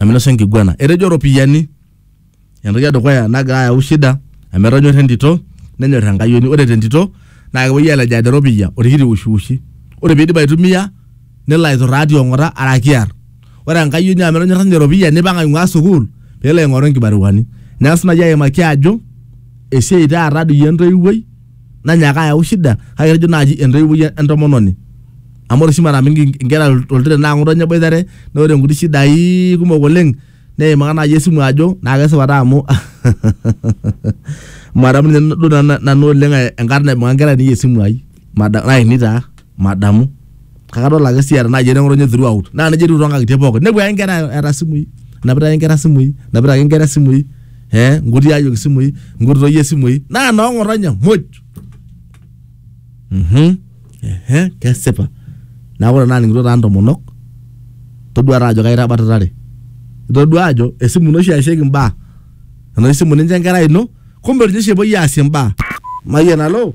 eminosa enkiguana. Etejo iropiyiani entoki edukuya nagira ayau shida amu etonyorra entito nenyor enkayioni. Ore te ntito naa kepuoi alejaa te ropiyia orkiti wushiwushi. Ore pee iidip aitumia nelo aituraa ti ong'ata araki kiar. Ore enkayioni amu etonyorra ninye eropiyia neipang aing'ua sukuul pee elo aing'oru inkibaruani. Neng'as naaji aimaki ajo esiai taata doi entoiwuoi nanyaaka ayau shida kake etejo naaji entoiwuoi entomononi amu ore oshi mara mingi inkera oltiren naa ng'oto ninye eboitare naa ore inkuti shidai kumok oleng neimaka naaji esimu ajo naa kesipa taa amu madamu ninye duo nanu oleng enkarna naibung'a inkera ainei esimu ai mada- lainei taa. madamu kake adol ake sii eeta naaji eneng'otonye throughout naa nejia etiu toonkang'itie pookin nepuo ake inkera eeta isimui enapita ake inkera isimui enapita ake inkera isimui eh inkuti ayiok isimui inkuti toyie isimui naa noong'otonye muj mhm ehe kesipa neeku ore naaning'ito taa intomonok todua taa ajo kaitabatatare itodua ajo esimu ino oshi eesieki imbaa enoshi simu nincho enkerai ino kumbe ninye oshi epuoi aasie imbaa mayian alo.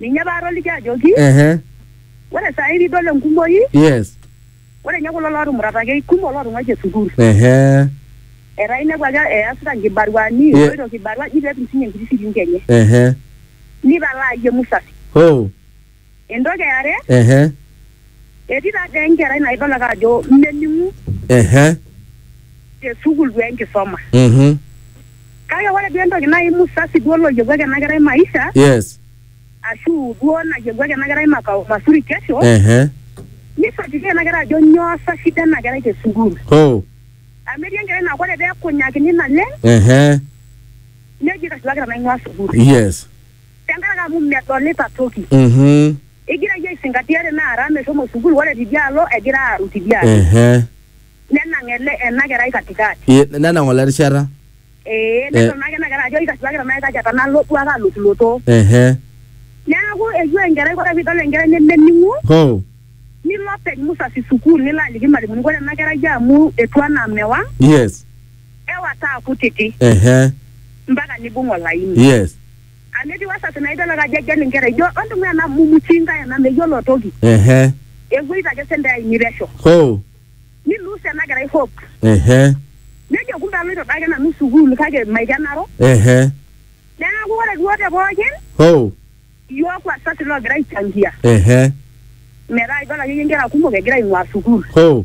Ninye paatoliki ajoki, ehe ore saai piidol enkumoi, yes ore ninye kulo lootumurataki eikumok lootung'uaitie sukuul. ehe Etaa inepu ake easita nkibaruani, Ye- eloito kibarua eji peetum siinye enkiti shilinki enye. ehe Nipalaa iyie musasi. hoo Entoki e are, ehe Etii taa dee enkerai naibala ake ajo mening'u ehe te sukuul duo enkisoma. mhm Kake ore duo entoki nai musasi duo loyewuaki ena kerai maisha yes ashu duo nayewuaki ena kerai makao mazuri kesho, ehe nifuatilia ena kerai ajo nyoo sa shida ena kerai te sukuul. hoo Amu etii enkerai naa ore pee ekunyakini naleng' ehe neji kaishoo ake tenaing'ua sukuul. yes Tenkaraki amu medolita toki. mhm Egira iyie aisingatia te naa Ram eshomo sukuul ore tidialo egira aaru tidialo. Ehe. Nenang ele ena kerai katikati. Ye, nenang ole rishata. Ee nedol naake ena kerai ajo aitasiwaki tenaa kaikaja tenalo duake alotuloto. Ehe. Neaku eyieu enkerai ore pee idol enkerai nemening'u. Hoo. Nilo openy musasi sukuul nilo aliki ilmalimuni ore ena kerai amu etiu anaa mewang. Yes. Ewa taa kutiti. Ehe. Mpaka neibung olaini. Yes. Amu etiu asasi naa idol ake ajo egel inkera ijo ontung'ua ena mumuchinga ena meyiolo toki. Ehe. Ewoita ake sentei ainei pesho. Hoo. Ni lose ena kerai hope. Ehe. Nejo kumbe aloito doi ake nanu sukuul kake maikenaro. Ehe. Neeku ore duo te pookin. Hoo. Iyiook wasasi loogira aichangia. Ehe. Metaa idol akeyie inkera kumok egira aing'ua sukuul. Hoo.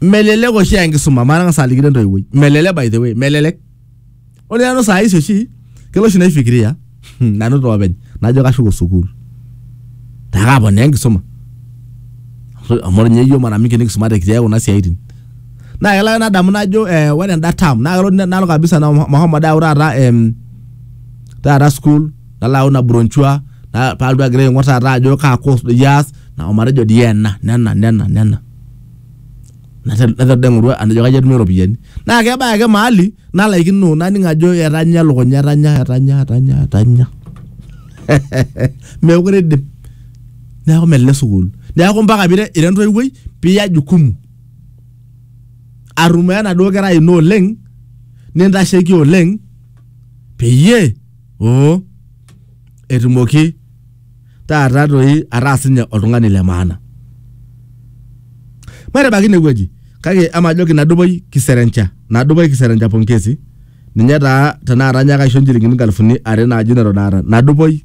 melelek oshi aa enkisuma matang'as alikino entoiwuoi melelek by the way melelek ore nanu saa hizi oshi kelo oshi naifikiria hmm, nanu toopeny najo kashuko sukuul taa kaponaa enkisuma amu ore ninye iyio mara mingi nikisumate kitii ake kuna siaitin naa kelo ake nadamu najo eh, ore enda term naa kelo nalo kabisa na- mahomo dau taata em, taata sukuul nalo ayau ina bronchua na- palotu agira aing'or taata ajo kaa course doi aas na omatejo dii ena nena nena nena Nate- naiteru dii aing'oru ajo kaji atumie iropiyiani na kebaya ake maali nalaikino naning ajo etanya elukunya etanya etanya etanya etanya mekure idim neaku melelek sukul neaku mpaka pira ira entoiwuoi piya jukumu arrumoo enaduo kerai ino oleng nintasheki oleng peyie oo etumoki taata toi ataa sinye oltung'ani le maana. Maitabaiki inewueji kake emajoki nadupoi kiserencha, nadupoi kiserencha pongezi ninye taa tenakata anyaaka aisho inchilingini inkalifuni are naaji neton aata, nadupoi.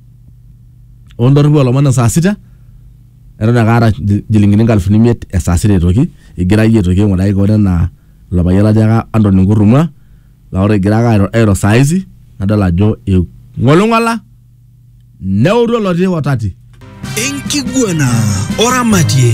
oo ndorripu oo lomon e saa sita eton ake aata inchilingini inkalifuni imiet e saa sita aitoki igira iyie aitoki aing'uraki kewon enaa ilo payian latiaka Anthony Nkurrumwa laa ore egira ake airo saa hizi nadol ajo ing'oling'ola neutu olotii kotati. Enkiguana oramatie.